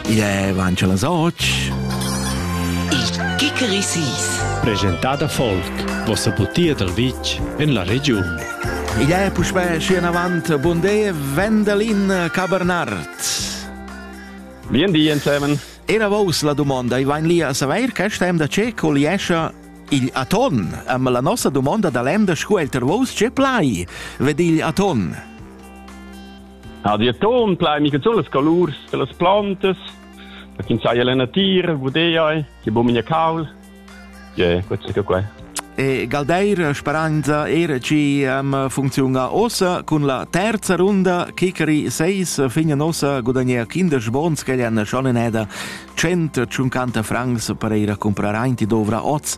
Igl è avancio las 8. Il Kikerisis. Presentada Folk, vossa butia dal vitg en la regiun. Igl è puspè schi avant Bondé Vendelin Cabernart. Bien di, ensemen. Era vos la domanda, i vain lì a saver che stem da ce col iescha il aton, amma la nossa domanda da l'emda scu elter vos ce plai, ved il aton. Ha di atton plai mica sul las colurs de las plantas, da kin sai la natira, gudei, che bu minia caul. Je, questo è qua. E Galdeir speranza era ci um, funziona ossa con la terza runda Kikeri 6 fine nossa guadagna kindes bons che han schon in eda 150 francs per ir a comprare anti dovra oz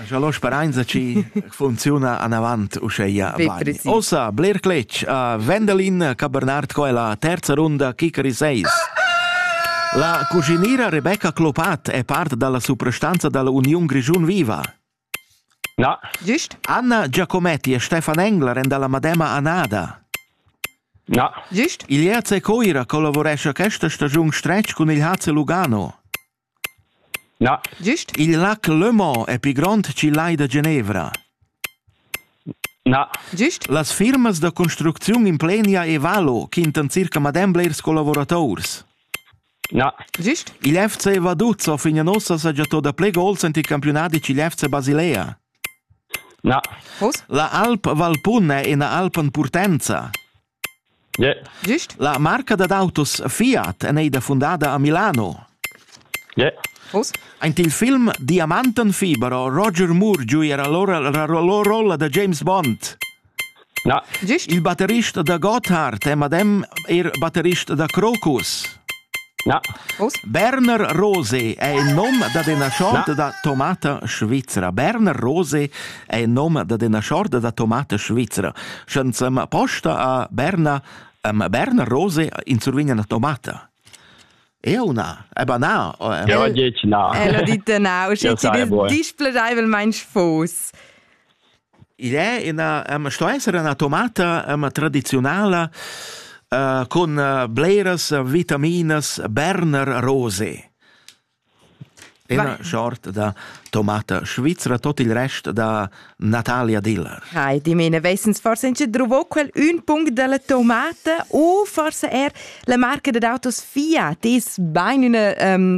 Scha lo speranza ci funziuna anavant uscheia bain. Ossa, bler cletg a Wendelin Cabernard co è la terza runda Kikari 6. La cuginira Rebecca Clopat è part dalla suprastanza dall'Uniun Grischun Viva. Na. Giust? Anna Giacometti e Stefan Engler en dalla Madema Anada. Na. Giust? Il Jace Coira collaboresce questa stagiun stretg cun il HC Lugano. Na, il lac Le Mans è pli grond ch'il lai da Genevra. Na, las firmas da construcziun implenia e valo quintan circa madem blers collavurators. Na, il FC Vaduzzo fin a nossa saja to da pli gols ent il campiunadi ch'il FC Basilea. Na, la Alp Valpun è ina alp en purtenza. Gist? La marca dad autos Fiat è neida fundada a Milano. Uss? Aint il film Diamantenfibero Roger Moore giu era lora la rolla da James Bond. Na. Gist? Il batterist da Gotthard è madem er batterist da Crocus. Na. Uss? Berner Rose è il nom dad ina chorda da tomata svizra. Berner Rose è il nom dad ina chorda da tomata svizra. Sche sem posta a Berna am Berner Rose in survigna una tomata. Eu na, aber na. Ja, dieci na. El ha dit na, usche ti displaceivelmain fos. Il è ina, ehm, sto esser ina tomata ehm, tradiziunala uh, cun uh, bleras vitaminas Berner Rose. Ina short da tomata svizra, tot il rest da Natalia Diller. Hai, dimene, wesens forse in trovo quel un punct della tomata o forse er la marca dad autos Fiat ist bein una um,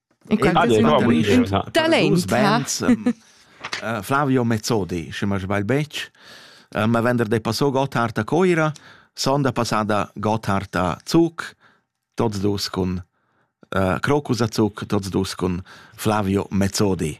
Talent Flavio Mezzodi, se ma sbagl betg, ma vender de passo Gotthard a Coira, son da passada Gotthard a Zug, tots dus cun uh, Crocus a Zug, tots dus cun Flavio Mezzodi.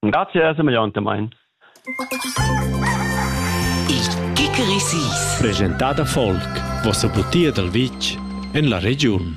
Grazie semegliontamain. Il Kickerisis. Presentada folk. Vossa butia dal vitg en la regiun.